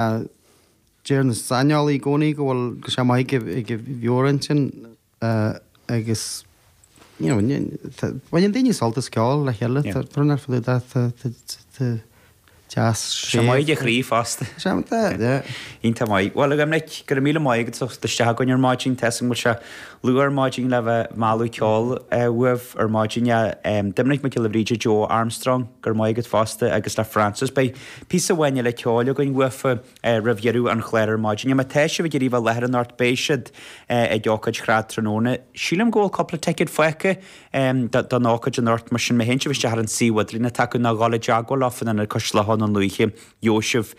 Deir na saineolaithe i gcónaí go bhfuil go sé maith ag an mheabhair intinn agus baineann daoine sult as ceol le chéile. Tá rún ar fad de deas sé. Sé maith ag an chroí fosta. Sé maith de, de. Iontach maith. Bhuel, a Dhoimnic, go raibh míle maith agat. As teacht isteach chugainn ar maidin, tá a fhios agam go bhfuil sé luath ar maidin le bheith ag mealladh ceoil uaibh ar maidin. Doimnic Mac Giolla Bhríde, Joe Armstrong, go raibh maith agat fosta agus le Frances Beidh Píosa amháin eile ceoil againn uafa roimh dheireadh an chláir ar maidin. Má tá sibh ag iarraidh a bheith i láthair anocht beidh siad ag ócáid shráid tráthnóna. Sílim go bhfuil cúpla ticéad fágtha don ócáid anocht mar sin má théann sibh isteach ar an suíomh idirlíon atá acu ná gabháil i dteagmháil leo san Ionad Cois Locha Dhún Lúiche gheobhaidh sibh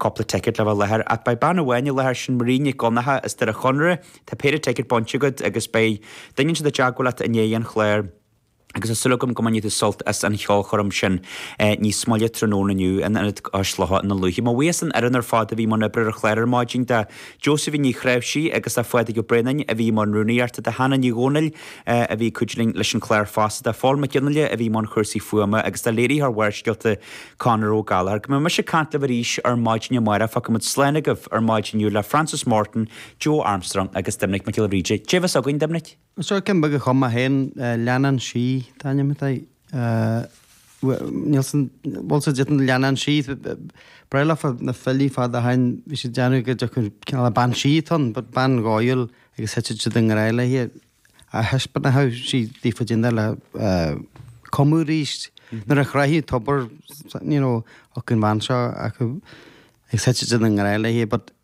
cúpla ticéad le bheith i láthair. Ach beidh bean amháin i láthair sin Marie Nic Dhonncha as Doire Chonaire tá péire ticéad bainte agat agus beidh duine ansin i dteagmháil leat i ndiaidh an chláir. agus tá súil agam go mbainfidh tú sult as an cheolchoirm sin níos moille tráthnóna inniu in Ionad Cois Locha Dhún Lúiche. Mo bhuíochas don fhoireann ar fad a bhí i mbun oibre ar an chlár ar maidin, do Josephine Ní Chnáimhsí agus do Phádraig Ó Braonáin a bhí i mbun rúnaíochta, do Hannah Ní Dhomhnaill a bhí ag cuidiú linn leis an chlár fosta, do Phól Mac Fhionnghaile a bhí i mbun chúrsaí fuaime agus do léiritheoir Bharrscéalta, Conor Ó Gallchóir. Go mbeidh mise ag caint libh arís ar maidin amárach, fágfaimid slán agaibh ar maidin inniu le Frances Morton, Joe Armstrong agus Doimnic Mac Giolla Bhríde. Caidé a bheas againn, a Dhoimnic? Seo ceann beag a chum mé féin, leannán sí an t-ainm atá air. Níl, bhfuil sé dith an leannán sí, ba bhreá leofa na filí fad ó shin, bhí siad ag déanamh go dtiocfadh cineál a bean sí ann, but bean dhóighiúil agus thitfeadh siad i ngrá léi agus thaispeánfadh sí daofa caidé an dóigh le cumadh arís nuair a thráfadh an tobar, thiocfadh an bhean seo chucu agus thitfeadh siad i ngrá léi but,